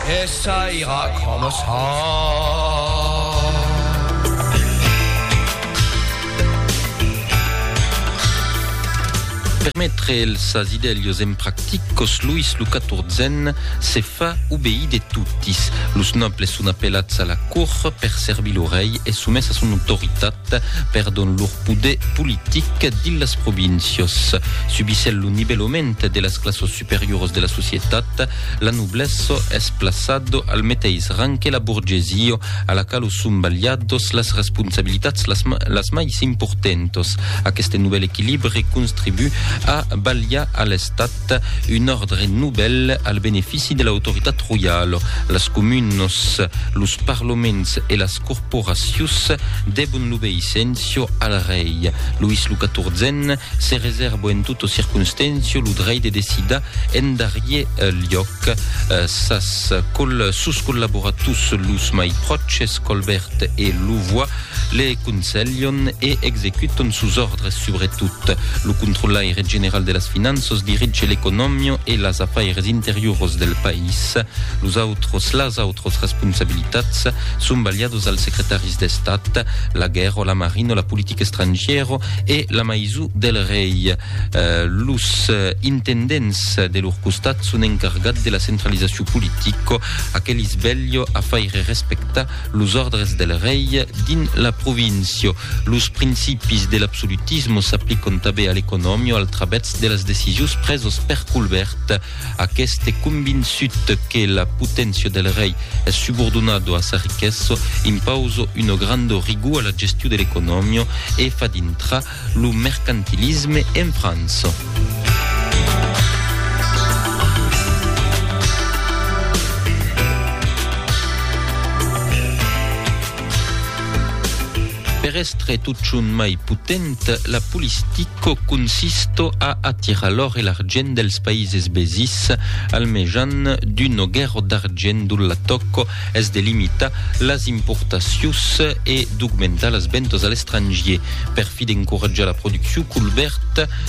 E saira coma son. Per metre els sas idèlios en practicos, Luis lo Catorzen se fa obeir de totis. Los nòbles son apelats a la cort per servir lo rei e somés a son autoritat. Perdon lor poder politic dins las províncias. Subissèl lo nivèlament de las classos superiors de la societat, la noblesse es plaçado al meteis rang que la borgesia, a la qualo son balhados las responsabilitats las, las mai s'importentos. Aqueste novèl equilibre contribu a balhar a l'estat un ordre novèl al benefici de l'autoritat royala. Las comunos, los parlaments e las corporacius debon l'obeissencio al rei. Luis lo quatorzèn se reserbo en tota circonstèncio lo drei de decidar en darrier liòc sas col sus collaboratus los mai pròches Colbèrt e Louvois le conselhon e executon sus òrdres subretot lo controlaire general de las finanças dirige l'economio e las afaires interiuros del país los autros las autros responsabilitats son balhados als secretaris d'Estat, la guèrra, la marina, la politica estrangièra e la maison del rei. Eh, los eh, intendents de lor costat son encargats de la centralizacion politica, aquelis velho a faire respectar los ordres del rei dins la província. Los principis de l'absolutisme s'aplican tanben a l'economia al travèrs de las decisions presas per Colbert, Aqueste est convinçut que la poténcia del rei es subordonado a sa riquesso, impauso uno grando rigor a la gestiu de l'economio e fa dintrar lo mercantilisme en França. Per èstre totjorn mai potent, la polistico consisto a atirar l'òr e l'argent dels païses vesins al mejan d'un noguèro d'argent dont la tòco es de limitar las importacions e d'augmentar las ventas a l'estrangier. Per fi d'encoratjar la produccion, Colbert,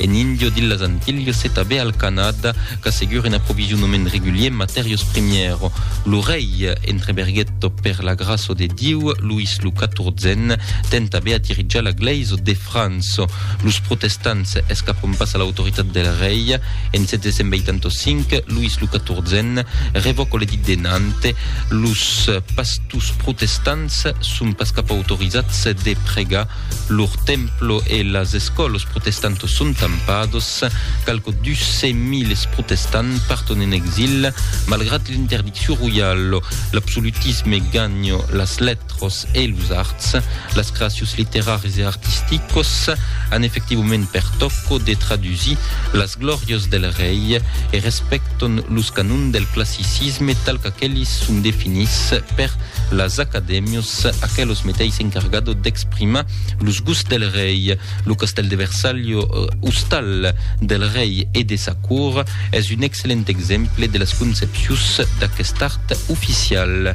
En Indio d'Illas Antilhas e tabé al Canada qu'assegure un aprovisionament regulier en matèrios primièrs. Lo rei entre berguèt per la gràça de Diu, Louis lo Catorzen ten tabé a dirijar la glèisa de França. Los protestants escapon pas a l'autoritat del rei. En 785, Louis lo Catorzen revòca l'edit de Nantes. Los pastors protestants son pas cap autorizats de pregar Lur templo e las escòlos protestantos son tampados. Qualques dus cents miles protestants parton en exil, malgrat l'interdiccion royalo. L'absolutisme ganha las letras e los arts. Las creacions literaris e artisticas an efectivament per tòco de tradusir las glòrias del rei e respèctan los canons del classicisme tal qu'aqueles son definits per las acadèmias Aquelos meteis encargado d'exprimar los gusts del rei. Lo castèl de Versalho, ostal del rei e de sa cort, es un excellent exemple de las concepcions d'aquest art oficial.